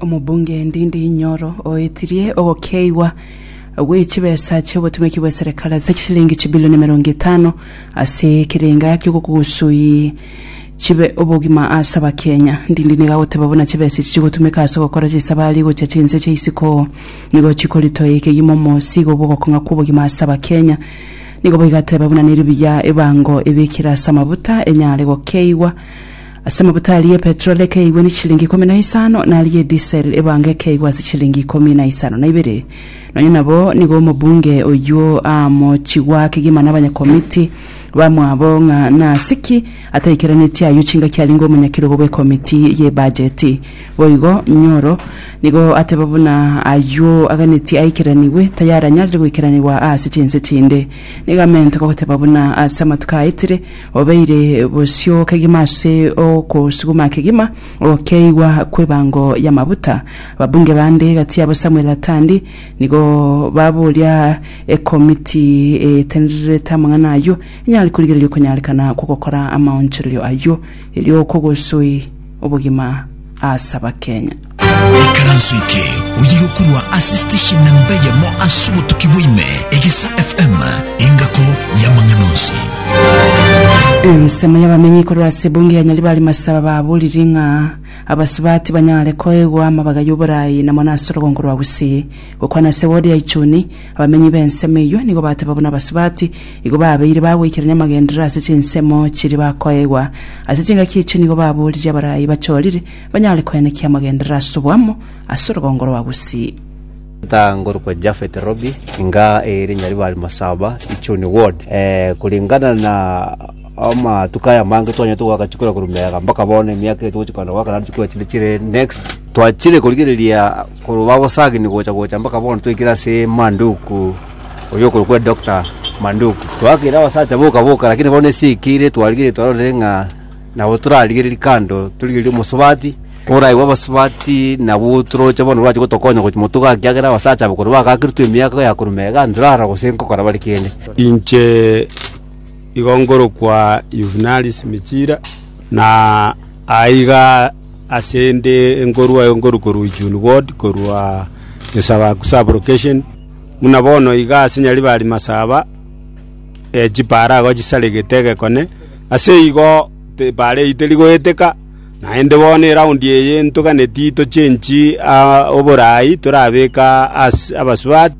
Omobunge Ndindi Nyoro oetirie ogokeigwa gwe chibesa chi'obotumeki bwe serikali ase chisilingi chibilioni emerongo etano ase ekerenga ki'ogokugusuyi chibe obogima ase Abakenya. Ndindi nigo agoteba buna chibesa echi chigotumeka ase ogokora chisabari gochia chinse chia isiko nigo chikoritoa ekegima omosigo bw'ogokong'a kw'obogima ase Abakenya. Nigo boigo ateba buna neribuya ebango ebekire ase amabuta enyare gokeigwa Ase amabuta aria ya petroli ekeigwa nechilingi ikomi na isano, na aria ya disel ebange ekeigwa ase chilingi ikomi na isano na ibere. Nonya nabo nigo omobunge oyio aamochigwa ake gima nabanyakomiti bamwabo ng'a nase ki ataikeranetie ayio chingaki arenge omonyakerogo bw'ekomiti y'ebajeti. Boigo, Nyoro nigo ateba buna ayio aganetie aikeranigwe, tayaranyarire goikeranigwa aase chinse chinde. Nigo amente goteba buna ase amatuko aetire, Obeire bosio kegima ase ogosuguma kegima okeigwa kw'ebango y'amabuta. Ababunge bande gati yabo Samuel Atandi nigo baboria ekomiti etendererete amang'ana ayio enyare korigereria okonyarekana kw'ogokora amaonchorerio ayio, erio okogosoi obogima as'Abakenya. Ekaranso eke oyire korwa ase station na mbeyemo ase obotuki bwaime Egesa FM engako y'amang'ana onsi. Ensemo y'abamenyi korwa ase ebunge ya Nyaribari Masaba baboriri ng'a abasubati tibanyare koegwa amabaga y'oboraai na mono ase orogongo rwa Gusii. Gokwana ase ward ya Ichuni, abamenyi b'ensemo eyio nigo bateba buna abasubati igo babeire bagoikerania amagenderero ase chinsemo chiria bakoegwa. Ase chingaki echi nigo baboririe abarai bachorire Banyare koyanekia amagenderero ase oboamo ase orogongo rwa Gusii. Nta ngorokwa Japhet Robbie, inga ere Nyaribari Masaba, Ichuni ward. Kuringana na amatuko aya amange twanyete goaka chikura korwa Meaga mpaka bono emiaka eye togochia kogenda goaka naende chikura chinde chire next. Twachire korigereria korwa babosagini gocha gocha mpaka bono twaikire ase Manduku oyo okorokwa Doctor Manduku. Twaakire abasacha boka boka lakini bono ase eikeire twarigereria twarorire ng'a. Nabo torarigererie kando, torigererie omosubati, oraigwe abasubati nabwo toroche bono orache gotokonya gochi motuga ekiagera abasacha aba korwa bagakerutwe emiaka ya korwa mega ntorara gose nkokora bare kende. Inche igo ngorokwa Yuvenali Simichira, na aiga asende nkorwa aye nkorwa korwa Ujuni ward korwa Gesabaku sub location, buna bono iga ase Nyaribari Masaba, chipaara igo chisaregete egekone. Aseigo tibareite rigoeteka, naende bono eraundi eye ntoganeti tochenchi oboraai torabeka ase abasubati.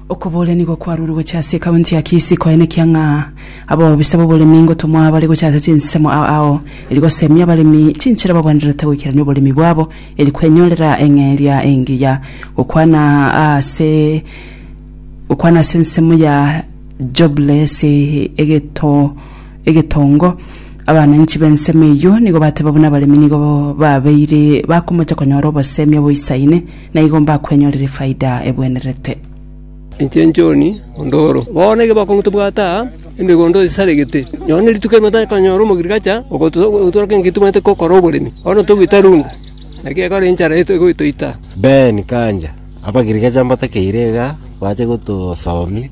Okobooria nigo kwarure gocha ase ekaunti ya Kisii koenekia ng'a abobisa b'oboremi ngotomwa bare gocha ase chinsemo ao eri gosemia abaremi chinchera babwenerete goikerania oboremi bwabo eri kwenyorera eng'eria engiya gokwana ase Gokwana ase ensemo ya Jubile ase egeto egetongo. Abananchi b'ensemo eyio nigo bateba buna abaremi nigo babeire bakomocha konyora obosemi oboisaine, na igo mbakwenyorire faida ebwenerete. Inche John ondoro. Bono ekero bakong'a tobwate aa emegondo esaregete, nonya ne rituko erimo tokonyora omogrigacha ogotworokia ngaki tobwenerete gokora oboremi. Bono togoita runda, naki ekero enchara egotoita. Ben Kanja. Abagiriki chambatakeire iga bache gotosomia,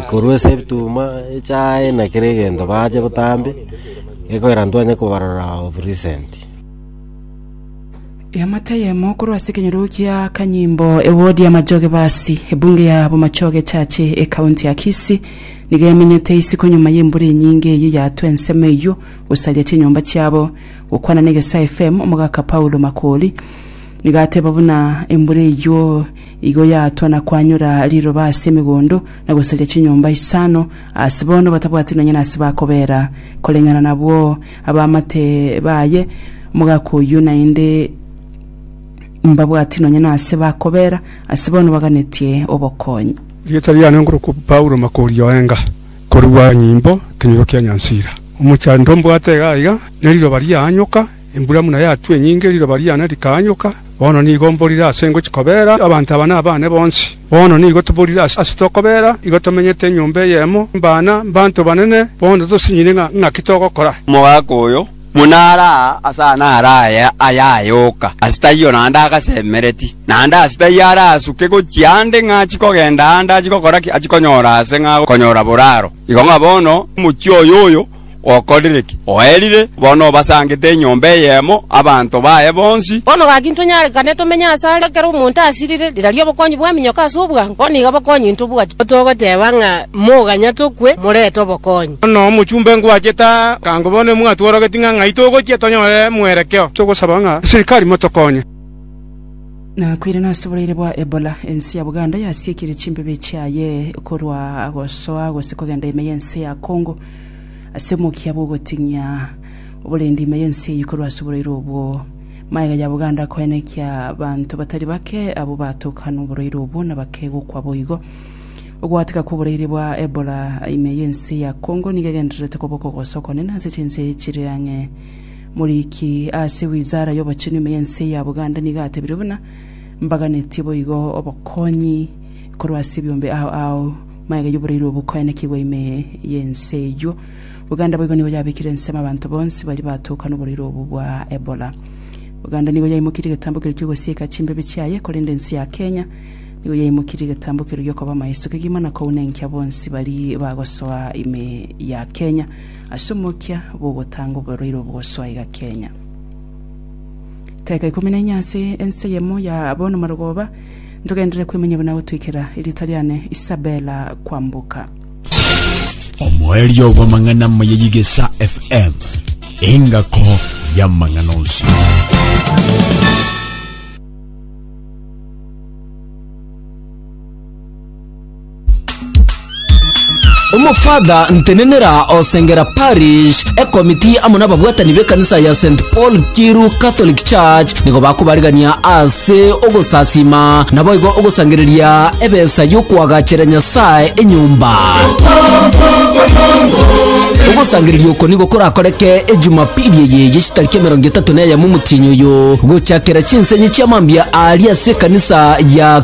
korwa ase ebituma echaye na kera egento bache botambe, gekoira ntwanye kobarora of recent. Eamate eyemo korwa ase ekenyoro kia Kanyimbo ewodi ya Machoge Basi, ebunge ya Bomachoge echache ekaunti ya Kisii, nigo emenyete isiko nyuma y'embura enyinge eyio yatwa ensemo eyio gosaria chinyomba chiabo. Gokwana na Egesaa FM, omogaka Paulo Makori, Nigateba buna embura eyio igo yatwa na kwanyora riroba ase emegondo, na gosaria chinyomba isano ase bono batabwati nonya nase bakobera. Koreng'ana nabwo abamate baye omogaka oyio naende mbabwati nonya nase bakobera, ase bono baganetie obokonyi. Rieta riane nkorokwa Paulo Makori Oenga, korua nyimbo, Ekenyoro kia Nyansira. Omochando mbwate iga iga, ne riroba riaanyoka, Embura buna yatwa enyinge, riroba riane rikaanyoka, bono nigo mborire ase ngochia kobeera abanto aba nabane bonsi. Bono nigo toborire ase tokobeera, igo tomenyete enyomba eyemo, mbana, mbanto banene, bono tosinyire ng'a ng'aki togokora. Omogaka oyo, buna are aa ase aa naro aye ayayoka, ase taiyo naende agasemereti, naende ase taiyo arasuke gochia ande ng'a achie kogenda ande achie gokora ki? Achie konyora aase ng'a agokonyora boraro. Igo ng'a bono omochie oyoyo, Okorire ki? Oerire, bono obasangete enyomba eyemo abanto baye bonsi. Bono gaki ntonyarerane tomenye aase are ekero omonto asirire, rirorio obokonyi bw'eminyoka ase obwango, bono nigo bokonyi intobwati. Nigo togoteba ng'a moganya tokwe, morete obokonyi. Bono omochumba enkwachete aa, ekango bono emwatworogetie ng'a ng'ai togochia tonyore mwerekeo. Togosaba ng'a eserikari motokonye. Nakwire nase oboraire bwa Ebola, ense ya Buganda yasiekire chimbebe chiaye korwa gosoa gose kogenda ime y'ense ya Congo. Ase omokia bw'ogoting'ia oborenda ime y'ense eyio korwa ase oborwaire obwo, magega ya Buganda akoenekia abanto batari bake abwo baatoka noborwaire obwo na bakegokwa boigo. Ogwateka kw'oborwaire bwa Ebola ime y'ense ya Congo nigo egendererete koba okogosa okonene ase chinse chire ang'e. Moriki ase wizara y'obochenu ime y'ense ya Buganda nigo atebire buna, Mbaganetie boigo obokonyi korwa ase ebiombe ao ao, Magega y'oborairi obo koenekigwa ime y'ense eyio. Buganda boigo nigo yabekire ensemo abanto bonsi baria batoka noboraire obo bwa Ebola. Buganda nigo yaimokirie egetambo keria ki'ogosieka chimbebi chiaye, korende ense ya Kenya nigo yaimokirie egetambo keria giokoba amaiso kegima na kounenkia bonsi bari bagosoa ime ya Kenya ase omokia bw'ogotanga oboraire obo gosoa iga Kenya. Teka ikomi na inye ase ense eyemo ya bono marogoba, Ntogenderere kwemanya buna gotoikera erieta riane Isabella kwamboka. Omoerio bw'amang'ana amaya y'Igesa FM, engako y'amang'ana onsi. Omofather Ntenenera o Sengera Parish, ekomiti amo n'ababwatani b'ekanisa ya St Paul Kiru Catholic Church nigo bakobarigania ase ogosasima naboigo ogosangereria ebesa y'okoagachera Nyasae enyomba. Ogosangereria oko nigo korakoreke ejumapili eye ye chitariki emerongo etato na eyemo omotienyi oyo gochakera chinsenyi chi'amambia aaria ase ekanisa ya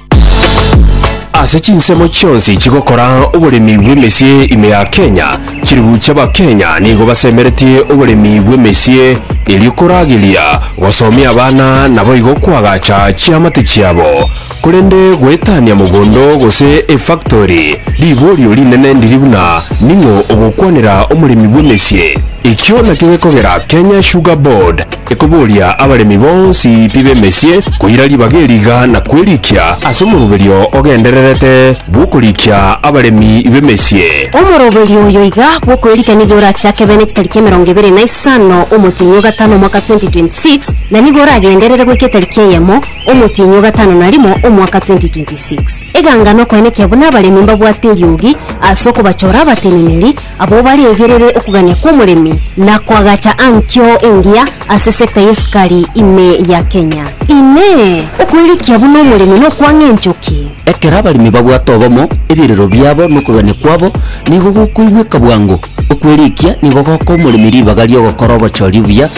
Ase chinsemo chionsi chigokora oboremi bw'emesie ime ya Kenya, chilifu chi'Abakenya nigo basemereti oboremi bw'emesie erio korageria gosomia abana naboigo koagacha chiamate chiabo. Korende goetania mogondo gose efactori, riborio rinene ndiri buna ning'o ogokwanera omoremi bw'emesie. Ekio nakio gekogera Kenya Sugar Board, Ekoboria abaremi bonsi pi b'emesie koira ribaga eriga na kwerikia ase omoroberio ogendererete bw'okorikia abaremi b'emesie. Omoroberio oyo iga bw'okwerikia nigo orachake bene chitariki emerongo ebere na isano omotienyi o gatano omwaka 2026 na nigo oragenderere goika etariki eyemo omotienyi o gatano na rimo omwaka 2026. Eganga nokoenekia buna abaremi mbabwate eriogi ase okobachora abateneneri Abwo baregerere okogania kw'omoremi na koagacha ankio engiya ase sector y'esukari ime ya Kenya. Inee! Okoirikia buna omoremi nokwang'a enchoki? Ekero abaremi babwate obomo, ebirero biabo na okogania kwabo nigo gokoigweka bwango. Okwerikia nigo gokoa omoremi ribaga ri'ogokora obochori obuya,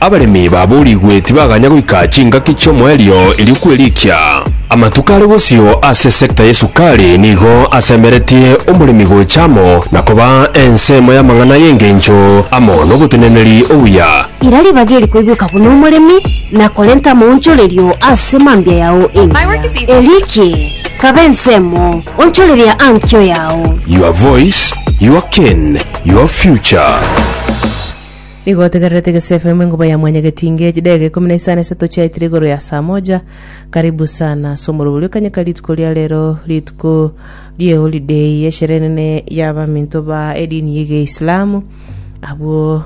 Abaremi baboorigwe tibaganya goika chingaki chi'omoerio erio kwerikia. Amatuko are bosio ase sector y'esukari nigo asemeretie omoremi gocha amo na koba ensemo y'amang'ana y'engencho amo n'oboteneneri obuya. Ira ribaga eri koigweka buna omoremi na korenta amaonchorerio ase mambia yao engiya, erikie kaba ensemo, onchoreria ankio yao. Your voice, your cane, your future. Nigo otegererete egesefa ime nguba ya mwanyagetinge, chidegeka ikomi na isano esato chiaetire igoro ya saa moja. Karibu sana ase omorobori okanyeka rituko ria rero, rituko rieholiday, eshere enene y'abaminto ba edini y'egeislamu. Abwo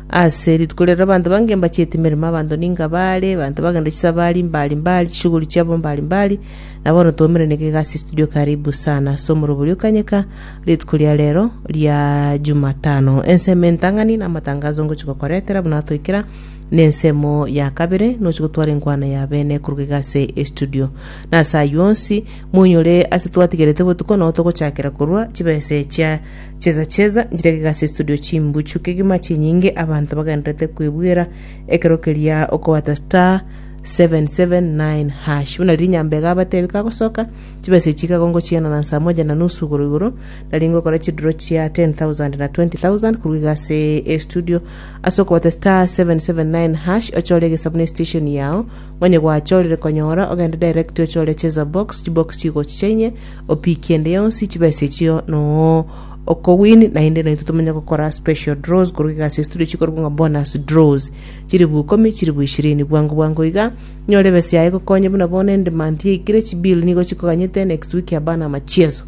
ase rituko rero abanto bange mbachiete emeremo, abanto ninga bare, abanto bagenda chisabari mbari mbari, chishughuli chiabo mbari mbari. Na bono twaumeraniga iga ase estudio karibu sana ase omorobori okanyeka. Rituko ria rero ria Jumatano, ensemo entang'ani namatangazo ngochi gokoretera buna atoikera nensemo ya kabere nochi gotwara enkwana ya bene koruga iga ase estudio. Nase ayio onsi, moinyore ase twatigerete botuko nao togochakera korwa chibesa echia cheza cheza nchirege iga ase estudio chimbuchu kegima chinyinge abanto bagendererete kwebuera ekero keria okobata star 779 hash. Buna riria Nyambega abatebi kagosoka, Chibese echi iga ngochiana na nsamo enchene na nusu igoro igoro, nari ngokora chiduro chia 10,000 na 20,000 korwa iga ase estudio. Ase okobata *779# ochore egesabu ne station yao, ngonye gwachorire konyora, ogende direct ochore cheza box, chibox chigochi chia inye, opikie ende yonsi, chibesa echio noo oko win naende naintwe tomenye gokora special draws korwa iga ase estudio chikorokwa ng'a bonus draws. Chiribu ikomi, chiribu ishirini, bwango bwango iga, Nyore besa yaye egokonye buna bono endemant yaikire chibill nigo chikoganyete next week abana amachieso.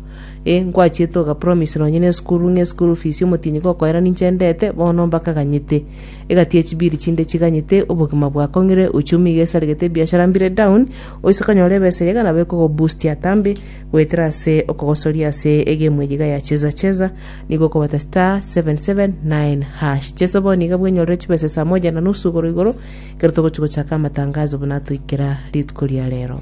Eh nkwachiete oga promise nonye ne esukuru ng'e school fees omotienyi gokoera ninche ndete bono mbakaganyete. Egati ye chibill chinde chiganyete obogima bwakong'ire uchumi iga esaregete ebiashara mbire down oise konyora ebesa eyio iga nabo ekogo boost atambe goetera ase okogosoria ase egemu eye iga ya cheza cheza nigo okobata star seven seven nine hash. Chesa bono iga bwenyorere chibesa saa moja na nusu igoro igoro Ekero togochia gochaka amatangazo buna atoikera rituko ria rero.